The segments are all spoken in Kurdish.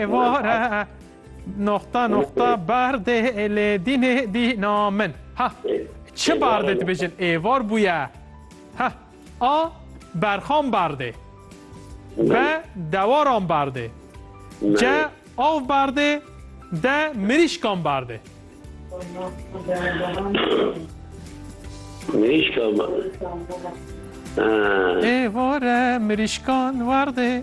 êvar e. Noxta noxta berdê lê dînê dîna min. Ha çi berdê dibêjin êvar bûye. Ha a berxan berdê. Be dewaran berdê. Ce av berdê de mirîşkan berdê. Mirîşkan berdê. Êvar e mirîşkan werdê.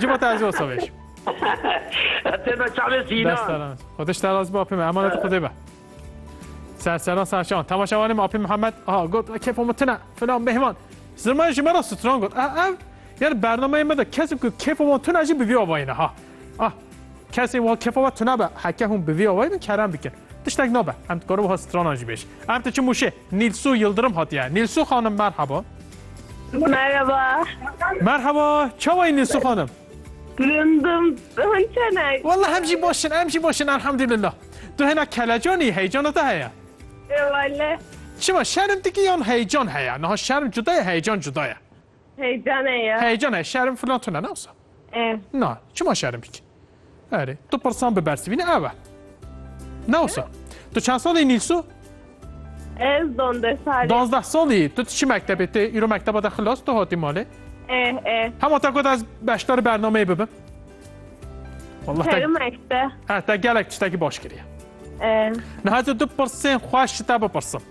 Cima te ez ê wasa vêjim. Te be çavê sînan. Dest daran. Xwedê ji te razî be apê me. Emanetê Xwedê be. Serseran serçewan. Temaşewanê me apê Mihemed. Ha got kêfa min tune. Filan mehman. Zirman ji me re stran got. Ev yani bernameyê me de kesim ku kêfa min tune jî bi vî avayî ne ha. Ah kesê wan kêfa me tune be. Heke hûn bi vî avayî bin kerem dikin. Tiştek nabe. Em dikarin wiha stranan jî bêj. Ev diçin mûşê. Nîlsû Yildirim hatiye. Nîlsû xanim merheba. Merhaba. Merheba. Çawa yî Nîlsû xanim? Gundim. Hûn çenek. Walla hem jî baş in, em jî baş in elhamdulillah. Tu hêna kelecanî, heycana te heye? Ê wele. Çima şerm dikî yan heycan heye? Niha şerm cuda ye, heycan cuda ye. Heycane ya. Heyecan e, şerm filan tune ne wisa? E. Na, çima şerm bik? Erê, tu pirsan bi bersivîne ev e. Ne wisa? Tu çend salî Nîlsu? Ez donde salî. Dozdeh salî. Tu çi mektebê tê? Îro mekteba de xilas tu hatî malê? E, e. Hema te got ez beşdarî bernameyê bibim. Wallah te, Kerim ekte. he, te gelek tiştekî baş kiriye. E. Niha tu du pirsên xweş ji te bipirsim.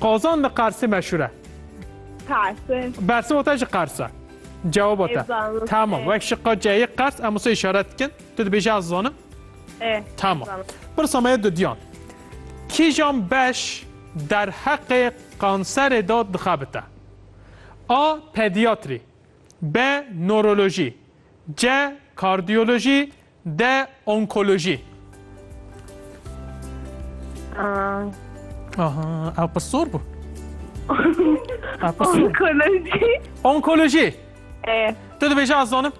Qazan li Qersê meşhûr e. Qersê. Bersê wata jî Qers e. Cewaba te. Êzanım. Tamam. Ê. Wek şiqa C'yê Qers em wisa işaret dikin. Tu dibêjî ez zanim. Ê. Tamam. Zanım. Pirsa me ye dudiyan. Kîjan beş derheqê kanserê de dixebite? A. Pediatrî B. Norolojî C. Kardiyolojî De onkolojî. Aha, ew pir sor bû. Ew pir sor. Onkoloji. Onkolojî. E, Tu dibêje ez zanim.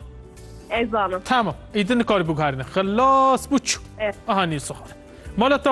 ez zanim. Tamam. Îdin nikari biguherîne. Xilas bû çû. Evet. Aha nîl soxar. Mala te